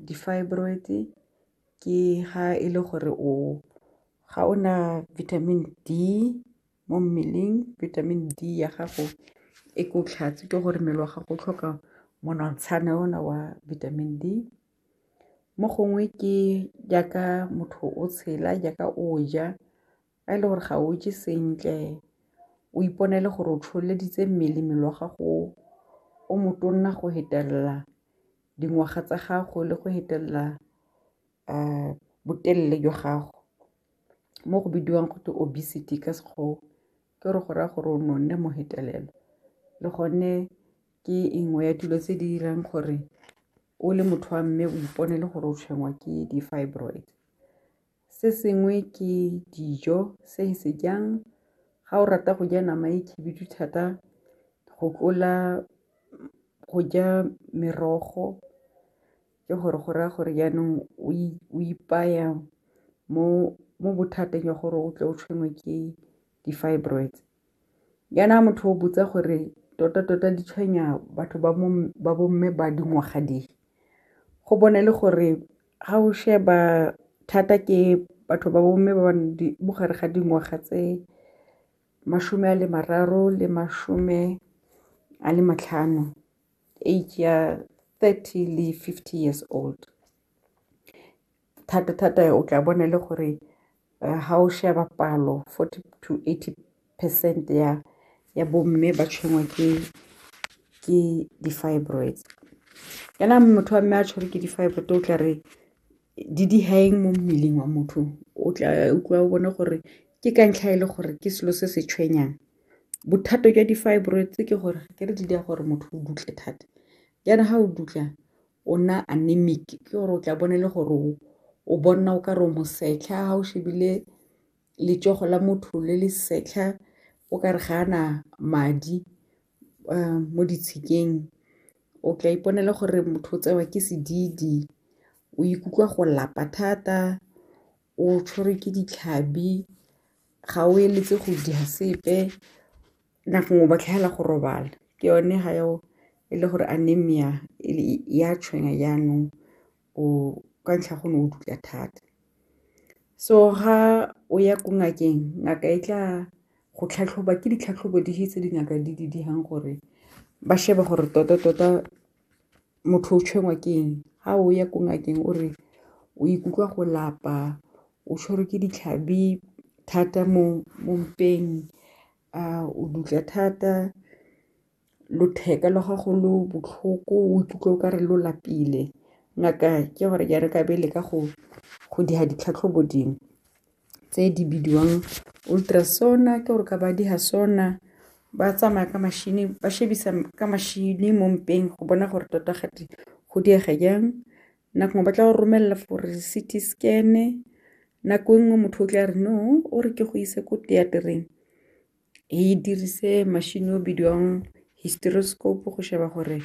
di-fibroid ke ga e le gore o ga o na vitamin D mo mmeleng, vitamin D ya gago e ko tlhatse ke gore mmele wa gago o tlhoka monontshane o na wa vitamin D, mo gongwe ke jaaka motho o tshela jaaka o ja a e le gore ga o je sentle o iponele gore o tsholeditse mmele mmele wa gago o motona go fetelela dingwaga tsa gago le go fetelela botelele jwa gago, mo go bidiwang gotwe obesity ka sekgowa ke gore go raya gore o nonne mo fetelela le gone ke e nngwe ya dilo tse di dirang gore o le motho wa mme o ipone le gore o tshwenngwa ke di-fibroid. Se sengwe ke dijo se e se jang ga o rata go ja nama e khibidu thata go tlola go ja merogo ke gore go raya gore jaanong o ipaya mo bothateng jwa gore o tle o tshwenngwe ke di-fibroids. jaana motho o botsa gore tota tota di tshwenya batho ba bo mme ba dingwaga di go bona e le gore ga o sheba thata ke batho ba bo mme ba mo gare ga dingwaga tse mashome a le mararo le mashome a le matlhano age ya thirty le fifty years old Thata thata o tla bona e le gore ha o sheba palo forty to eighty percent ya bo mme ba tshwenngwa ke di-fibroids. Kana motho wa mme a tshwere ke di-fibroid o tla re di diha eng mo mmeleng wa motho o tla utlwa o bone gore ke ka ntlha ele gore ke selo se se tshwenyang. Bothata jwa di-fibroids ke gore akere di dira gore motho o dutle thata jaana ha o dutla o nna anemic ke gore o tla bone le gore o bonna o ka re o mosetlha ga o shebile letsogo la motho le le setlha o ka re ga ana madi um mo ditshikeng o tla iponela gore motho o tsewa ke sedidi, o ikutlwa go lapa thata, o tshwerwe ke ditlhabi, ga o eletse go dira sepe. nna gongwe ba tlhaela go robala ke yone ga eo e le gore anemia ya tshwenya jaanong o ka ntlha go ne o dula thata. So ga o ya ko ngakeng ngaka e tla go tlhatlhoba ke ditlhatlhobo di tse dingaka di di dirang gore ba shebe gore tota tota motho o tshwenngwa ke eng, ga o ya ko ngakeng o re o ikutlwa go lapa o tshwerwe ke ditlhabi thata mo mpeng. a o dutla thata lotheka la gago lo botlhoko o ikutlwa o ka re lo lapile ngaka ke gore ke re ka be le ka go go diga ditlhatlhobo dingwe tse di bidiwang ultrasound ke gore ka ba di ga sona ba tsamaya ka machine ba shebisa ka machine mo mpeng go bona gore tota gate go diega jang. nako ba tla go romelela for CT scan nako e nngwe motho o tla re no o re ke go ise ko teatereng e dirise machine o bidiwang hysteroscope go sheba gore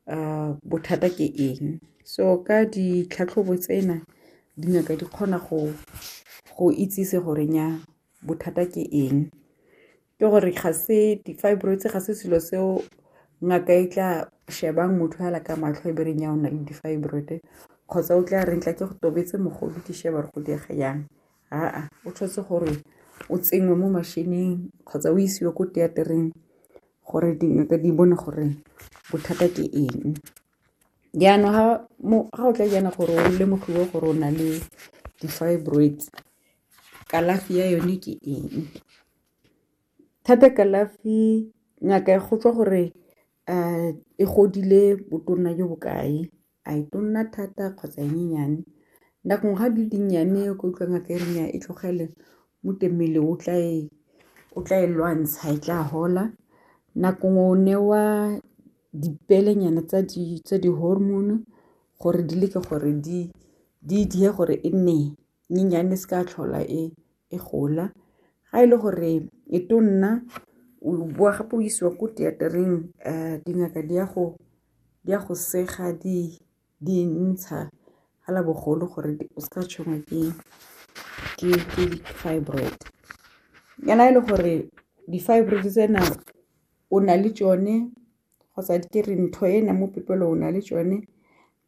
uh, bothata ke eng so ka ditlhatlhobo tsena dingaka di kgona go go itsise gore nya bothata ke eng ke gore ga se di-fibroids ga se selo seo ngaka e tla shebang motho fela ka matlho e bereng ya o na le di-fibroid kgotsa o tla reng tla ke go tobetse mogolo ke sheba gore go diega yang aa o tshwanetse gore o tsenngwe mo mashineng kgotsa o isiwe ko teatereng gore dingaka di bone gore bothata ke eng jaanong ga o tla jaana gore o lemogiwe gore o na le di-fibroids kalafi ya yone ke eng Thata kalafi ngaka e go tswa gore e godile botona jo bo kae, a e tona thata kgotsa e nyenyane, nako ga di dinnyane o ka utlwa ngaka e re nnya e tlogele gotwe mmele o tla e o tla e lwantsha e tla gola. Nako ngwe o newa dipele nyana tsa di tsa di-hormone gore di leke gore di di dire gore e nne. nyenyane se ka tlhola e e gola ga e le gore e to nna o bowa gape o isiwa ko theater-eng dingaka di ya go sega di ntsha fela bogolo gore o seka tshwenngwa ke di-fibroid. Jaana e le gore di-fibroid tsena o na le tsone kgotsa ke re ntho ena mo pipelo o na le tsone.